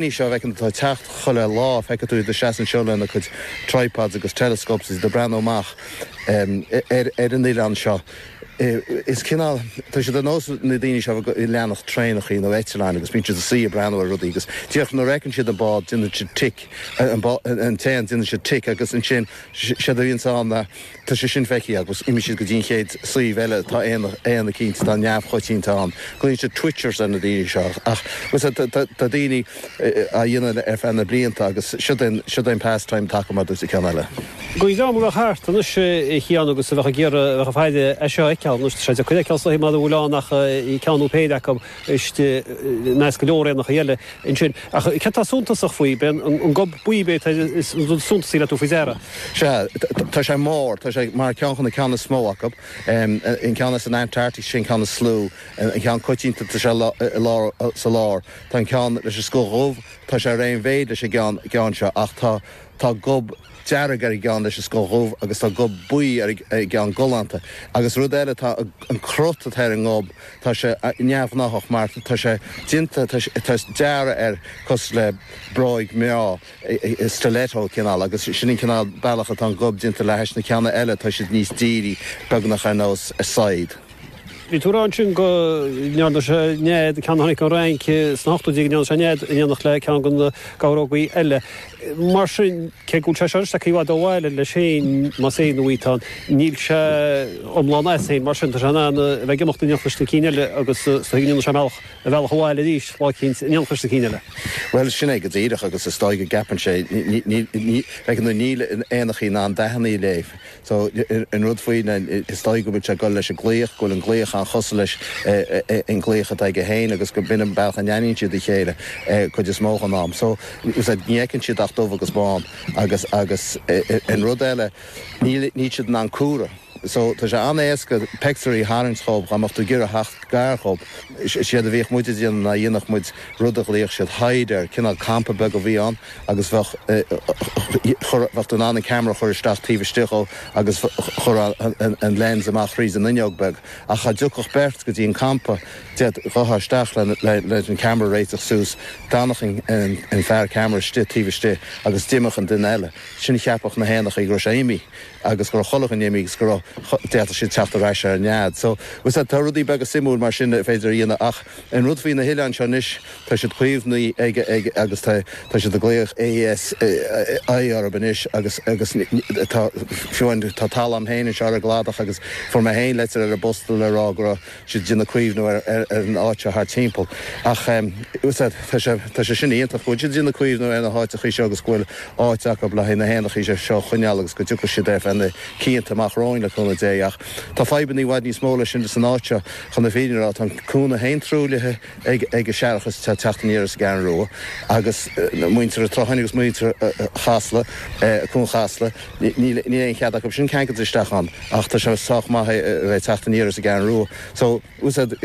Daoine seo a bhfeiceann tú ag teacht chuile lá, feicfidh tú iad ag seasamh anseo lena cuid tripods agus telescopes iad ag breathnú amach ar an oileán seo. Is cineál, tá siad ar nós na daoine seo ag leanacht traenachaí nó eitleáin agus bíonn siad ina suí ag breathnú ar rudaí agus díreach nuair a fheiceann siad an bád déanann siad tic, an t-éan, déanann siad tic agus ansin séard a bhíonns ann Tá sé sin feicthe agus imíonn siad go dtí an chéad suíomh eile, tá éan eicínt atá neamhchoitianta ann. Glaíonn siad Twitchers ar na daoine seo. Ach muise, tá daoine á dhéanamh ar feadh na blianta agus siod é an pastime atá acu, mar a dúirt an ceann eile. Guí dom go raibh thart anois, a Sheáin, agus a bheadh ag iarraidh a bheith ag faire air seo a fheiceáil. Anois tá sé deacair a fheiceáil sa mhaidin mura bhfuil ann ach ceann nó péire acu. istigh i measc go leor éanachaí eile ansin. Ach céard tá suntasach faoi? Ab é an gob buí b'é is suntasaí le tabhairt faoi deara. Sea, tá sé mór, tá sé mar ceann de na ceanna is mó acu. An ceann as an Antartaic, sin an ceann is lú, an ceann coitianta, tá sé i lár, sa lár. Tá an ceann leis an scoth dhubh, tá sé ar aon mhéid leis an gceann seo, ach tá gob. dearg ar an gceann leis an scoth dhubh agus tá gob buí ar an gceann galánta agus rud eile tá an cruth atá ar an ngob tá sé neamhghnáthach mar tá sé déanta tá dearadh air cosúil le bróig mná stiletto cineál agus sin an cineál bealach atá an gob déanta le hais na ceanna eile tá siad níos dírí beagnach ar nós saighead. Bhí tú ag rá ansin go ndearna sé nead ceann a tháinig an Fhrainc sna hochtóidí go ndearna sé nead in éineacht le ceann de na geabhrógaí eile. Mar sin cé go bhfuil sé seo anois i bhfad ó bhaile leis féin, más é nó í atá ann, níl sé iomlán as féin mar sin tá sé in ann a bheith ag imeacht in éineacht leis na cinn eile agus go ndéanfaidh sé a bhealach abhaile arís lá éicint in éineacht leis na cinn eile. Bhuel sin é go díreach agus is dóigh go gceapann sé bheadh an níl éanachaí in ann dathanna a léamh So, an rud faoi na, is dóigh go bhfuil sé ag dul leis an nglaoch, go bhfuil an glaoch an-chosúil leis an nglaoch atá aige féin agus go mb'in é an bealach a n-aithníonn siad a chéile cuid is mó den am. So, ní fheiceann siad ach dubh agus bán. Agus, agus an rud eile, níl, níl siad in ann comhaireamh. So, tá sé an-éasca peictiúirí a tharraingt dhóibh dhá mbeadh tú ag iarraidh a theacht gar dhóibh. Séard a bhíodh muid ag déanamh ná dhéanfadh muid rud a ghlaodh siad hide air, cineál campa beag a bhí ann. agus bheadh tú in ann an ceamara a chur isteach taobh istigh dhó agus chuirfeá an lens amach thríd an fhuinneog beag ach dhá dtiocfadh beirt go dtí an campa d'fhéadfá a dhul isteach leis an ceamara a réiteach suas d'fhanfadh an fear ceamara istigh taobh istigh agus d'imeodh an duine eile ansin cheapfadh na héanachaí go raibh sé imithe agus go raibh chuile dhuine imithe agus go raibh d'fhéadfadh siad teacht ar ais ar an nead so tá a fhios agat tá rudaí beaga suimiúil mar sin ar féidir a dhéanamh ach an rud faoi na hoileáin seo anois tá siad caomhnaithe ag ag agus tá tá siad ag glaoch ASI orthu anois agus agus tá fiú an tá talamh féin anseo ar an gcladach agus fuair mé féin leitir ar an bpost le rá go raibh siad déanamh caomhnú ar ar an áit seo thar timpeall ach tá's a'd tá sé tá sé sin iontach go bhfuil siad déanamh caomhnú ar na h-áiteachaí seo agus go bhfuil áit acu le haghaidh na h-éanachaí seo seo a choinneáil agus go dtiocfaidh siad ar feadh na cianta amach romhainn le cúnamh Dé ach tá fadhbanna i bhfad níos mó ná sin san áit seo chun na fírinne a rá tá an cuan fhéin truaillithe ag an séarachas atá ag teacht aniar as an gCeathrú Rua agus muintir an tSrutháin agus muintir Chasla, Cuan Chasla, níl aon chead acu sin ceangailt isteach ann ach tá sé sách maith é a bheith teacht aniar as an gCeathrú Rua so tá's a'd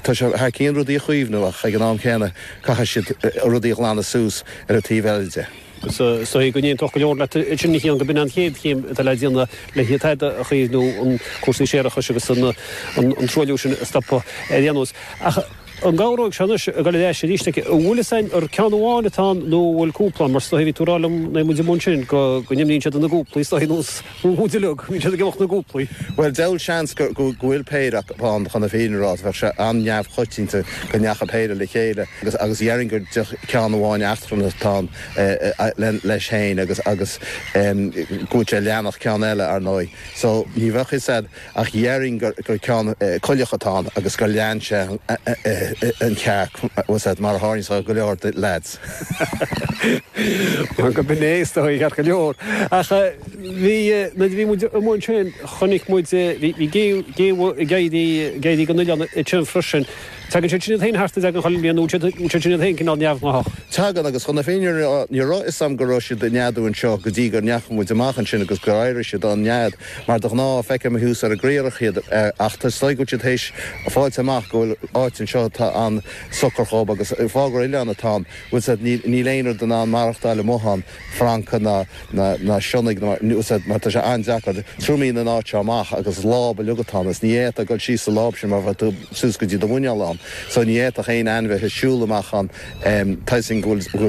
tá sé thar cíonn rudaí a chaomhnú ach ag an am céanna caithfidh siad rudaí a ghlanadh suas ar an taobh eile de. Is dóigh go n-aontódh go leor leat ansin, a Chian, gurb in an chéad chéim atá le déanamh le hiad a chaomhnú, an cúrsaí séarachais agus an truailliú sin a stopadh ar aon nós. Ach an gcabhróidh seo anois dul ar ais arís? An bhfuil fhios a'inn ar ceann amháin atá ann nó an bhfuil cúpla ann? Mar is dóigh bhí tú a' rá liom, nuair a bhí muid amuigh ansin, go n-imíonn siad ina gcúplaí is dóigh, nó is. iondúil go mbíonn siad ag imeacht ina gcúplaí. Bhuel, deabhal seans go bhfuil péire acu ann chun na fírinne a rá, bheadh sé an-neamhchoitianta go ndeachaigh péire le chéile agus dhéarfainn gur díreach ceann amháin eachtrannach atá ann leis féin agus go bhfuil sé ag leanacht ceann eile, ar ndóigh, so ní bheadh 'fhios a'd. ach dhéarfainn gur ceann coileach atá ann agus gur lean sé an chearc, mar a tharlaíonn do go leor leaids. Go mba é is dóigh, ceart go leor. Ach bhí, nuair a bhí muid amuigh ansin, chonaic muid, bhí géabha ag éirí den oileán ansin freisin. Tagann siad sin iad féin thart i dteaghlaigh chuile bhliain nó an bhfuil siad iad féin cineál neamhghnáthach. Tagann, agus chun na fírinne a rá, ní raibh fhios agam go raibh siad ag neadú anseo go dtí go ndeachaigh muid amach ansin agus gur éirigh siad ón nead. Mar de ghnáth, feicim thuas ar an gcriathrach iad, ach tá's a'd tá siad théis fáilt amach go bhfuil áit anseo atá an-socair dhób, agus faoi gur oileán atá ann, tá's a'd, níl aon rud in ann maireachtáil amuigh ann, francaigh ná ná sionnaigh ná mar, tá's a'd, mar tá sé an-deacair triomaíonn an áit seo amach agus is láib bhog atá ann, is ní fhéadfá dul síos sa láib sin mar bheadh tú suas go dtí do mhuineál ann, so ní fhéadfadh aon ainmhithe siúl amach ann, em, toisc go bhfuil, go bhfuil.